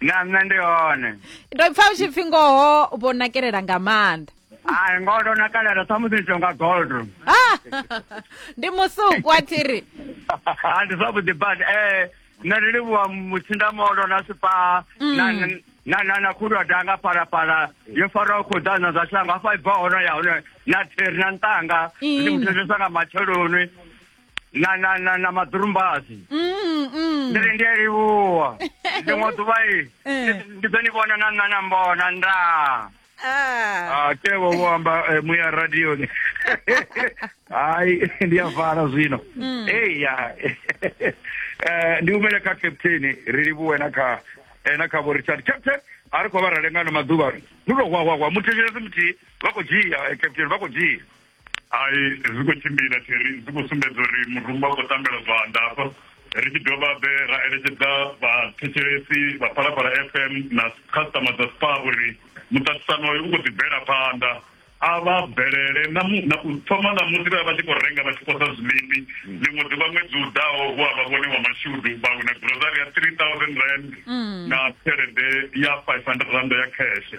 na nṋe ndi hone ndo pfa u tshi pfi ngoho vho nakelela nga maanḓa ai ngoho ndo nakalela samusi ndi tonga gold Ah, ndi musuku a thiri Ah, ndi zwavhuḓi but eh nṋe ndi livhuwa mutsindamolo na sipa na na na na khulu ya danga phalaphala yo faraho khuḓana zwa shango hafha ibva hone ya hone na theri na ntanga ndi Ina. muthetshesa nga matsheloni na na na na maḓurumbasi Mm, mm. ndi ri ndi a livhuwa ḽiṅwe ḓuvha i Eh. ndi ḓo ni vhona na nṋa na mbona nda Ah. Ah, tevo vho amba eh, muya radioni hayi ndi a vala zwino eya Eh, ndi humele kha captain ri livhuwe na kha eh, na kha vho richard captain a ri khou vha ra lengano maḓuvha ndi to hwahwahwa muthetshela si muthihi vha khou dzhia eh, captain vha khou dzhia hai zwi khou tshimbila theri zwi khou sumbedza uri murumba u khou tambela zwanḓa hafha ri tshi dovha be ra eletshedza vhathetshelesi vha phalaphala f m na khasitama dza spa uri muṱaṱisano uyu u khou ḓi bvela phanḓa a vha bvelele na u thoma na musi vha vha tshi khou renga vha tshi posa zwiḽipi ḽiṅwe ḓuvha ṅwedzi u ḓaho hu a vha vhone wa mashudu vha wina grosari ya three thousand rand mm. na tshelede ya five hundred rand ya kheshe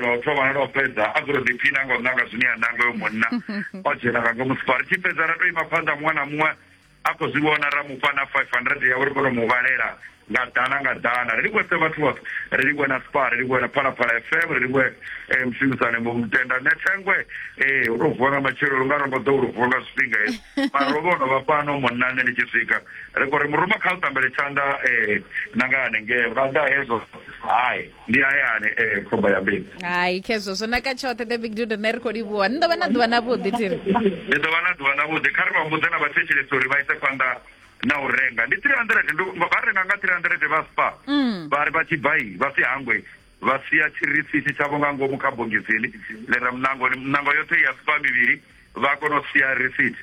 lwa u thoma na lwa u fhedza a dzule ḓiphina nga u nanga zwine ya nanga yo munna o dzhena nga ngomu sipa ri tshi fhedza ra to ima phanḓa muṅwe na muṅwe a khou zwi vhona ra mufha na five hundred yawe ri kone u mu vhalela nga ḓana nga ḓana ri livhuwe vhathu vhoṱhe ri livhuwe na spa ri livhuwe na phalaphala fm ri livhuwe eh, mushumisani mutenda ne thengwe ee eh, u to vuwa nga matshelo lu nga rongo ḓo lu vuwa nga zwifhinga hezwi mara ro vhono vha fhano munna nṋe ndi tshi swika ri kho ri muruma kha u tambele tshanḓa um eh, na nga hanengee vha ḓa hezwo hai ndi hayani eh khomba ya mbili hai khezwo zwo naka tshoṱhe the big dude ne ri khou livhuwa ni ḓo vha na ḓuvha na vhuḓi thiri ndi ḓo vha na ḓuvha na vhuḓi kha ri vha mbudze na vhathetshelesi uri vha ise phanḓa na u renga ndi 300 ndo vha renga nga 300 vha spa mm. vha ri vha tshi bai vha si hangwe vha sia tshirisisi tshavho nga ngomu kha bongisini ḽi ra munango munango yoṱhe ya spa mivhili vha kona u sia risiti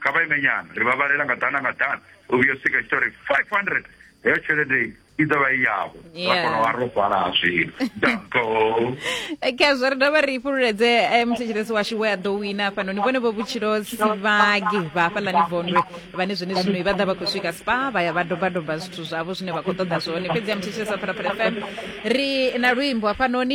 kha vha ime nyana ri vha vhalela nga ḓana nga ḓana u vhuya sika tshi tori 500 heyo tshelede i ḓo vha i yavho ra kona u vha ro fhala zwino dako khazwo ri dovha ri fhululedze eh, muthetshelesi washu we a ḓo wina hafhanoni vhone vho vhutshilo sivhagi vha hafhaḽani vondwe vhane zwene zwino i vha ḓa vha khou swika spa vha ya vha dobadoba zwithu zwavho zwine vha khou ṱoḓa zwone fhedzi ya muthetshelesi wa phalaphala fm ri na luimbo hafhanoni